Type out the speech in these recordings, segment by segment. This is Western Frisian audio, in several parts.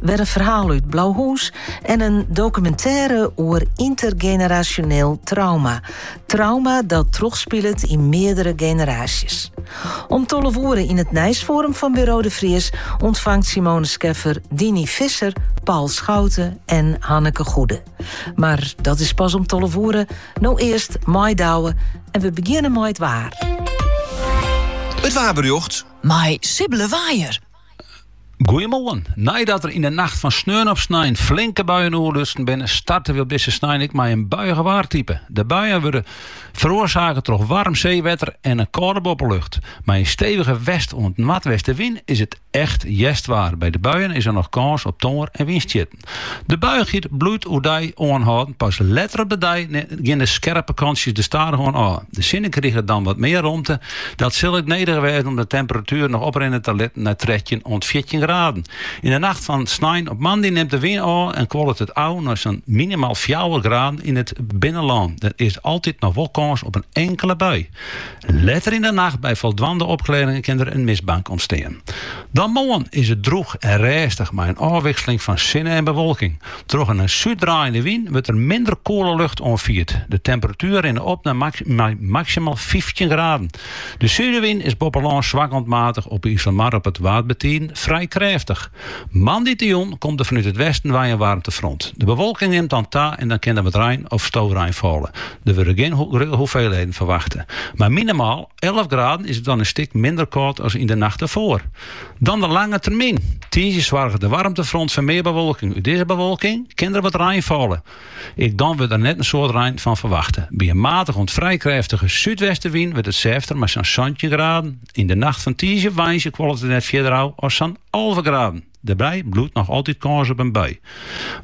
Wer in ferhaal út Blauhûs en in dokumintêre oer yntergenerasjoneel trauma. Trauma dat trochspilet yn meardere generaasjes. Om tolve oere yn it nijsforum fan Buro de Vries ûntfangt Simone Scheffer Dinie Visser, Paul Schouten en Hanneke Goede. Mar dat is pas om tolve oere, no earst mei Douwe en we begjinne mei it waar. It waarberjocht mei Sibylle Waaijer. Goeiemoarn. Neidat der yn de nacht fan sneon op snein flinke buien oerlutsen binne, starte we op dizze snein ek mei in buiich waartype. De buien wurde feroarsake troch waarm seewetter en in kâlde boppelucht. Mei in stevige west oant noardweste wyn is it echt hjerstwaar. By de buien is der noch kâns op tongear en wynstjitten. De buiigheid bliuwt oerdei oanhâlden, pas letter op de dei gean de skerpe kantsjes der stadichoan ôf. De sinne kriget dan wat mear romte, dat sil ek nedich wêze om de temperatuer noch oprinne te litten nei trettjin oant fjirtjin graden. Yn de nacht fan snein op moandei nimt de wyn ôf en kuollet it ôf nei sa'n minimaal fjouwer graden yn it binnenlân. Der is altyd noch wol kâns op in inkele bui. Letter yn de nacht by foldwaande opklearringen kin der in mistbank ûntstean. Dan moarn is it drûch en rêstich mei in ôfwikseling fan sinne en bewolking. Troch in nei súd draaiende wyn wurdt der minder koele lucht oanfierd. De temperatueren rinne op nei maksimaal fyftjin graden. De súdewyn is boppe lân swak oant matich, op de Iselmar en op it Waad bytiden frij krêftich. Moandeitejûn komt der fanút it westen wei in waarmtefront. De bewolking nimt dan ta en der kin dan wat rein of storein falle. Der wurde gjin grutte hoeveelheden ferwachte. Mei minimaal alve graden is it dan in stik minder kâld as yn de nacht derfoar. Dan de lange termyn. Tiisdei soarget it waarmtefront foar mear bewolking. Út dizze bewolking kin der wat rein falle. Ek dan wurdt der net in soad rein fan ferwachte. By in matich oant frij krêftige súdwestenwyn wurdt it sêfter mei sa'n santjin graden. Yn de nacht fan tiisdei op woansdei kuollet it net fierder ôf as sa'n alve graden. Dêrby bliuwt noch altyd kâns op in bui.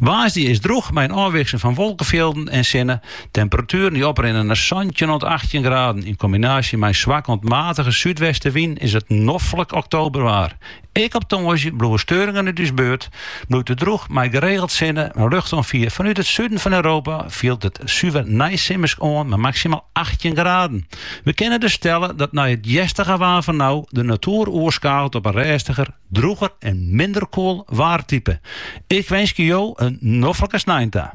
Woansdei is it drûch mei in ôfwikseling fan wolkefjilden en sinne. Temperatueren dy't oprinne nei santjin oant achttjin graden. Yn kombinaasje mei in swak oant matige súdwestenwyn is it noflik oktoberwaar. Ek op tongersdei bliuwe steuringen út ús buert, bliuwt it drûch mei geregeld sinne. Yn luchtoanfier fanút it suden fan Europa fielt it suver neisimmersk oan mei maksimaal achttjin graden. We kinne dus stelle dat nei it hjerstige waar fan no de natoer oerskakelt op in rêstiger, drûger en minder koel waartype. Ik winskje jo in noflike snein ta.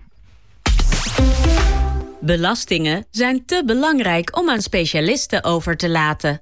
Belastingen zijn te belangrijk om aan specialisten over te laten.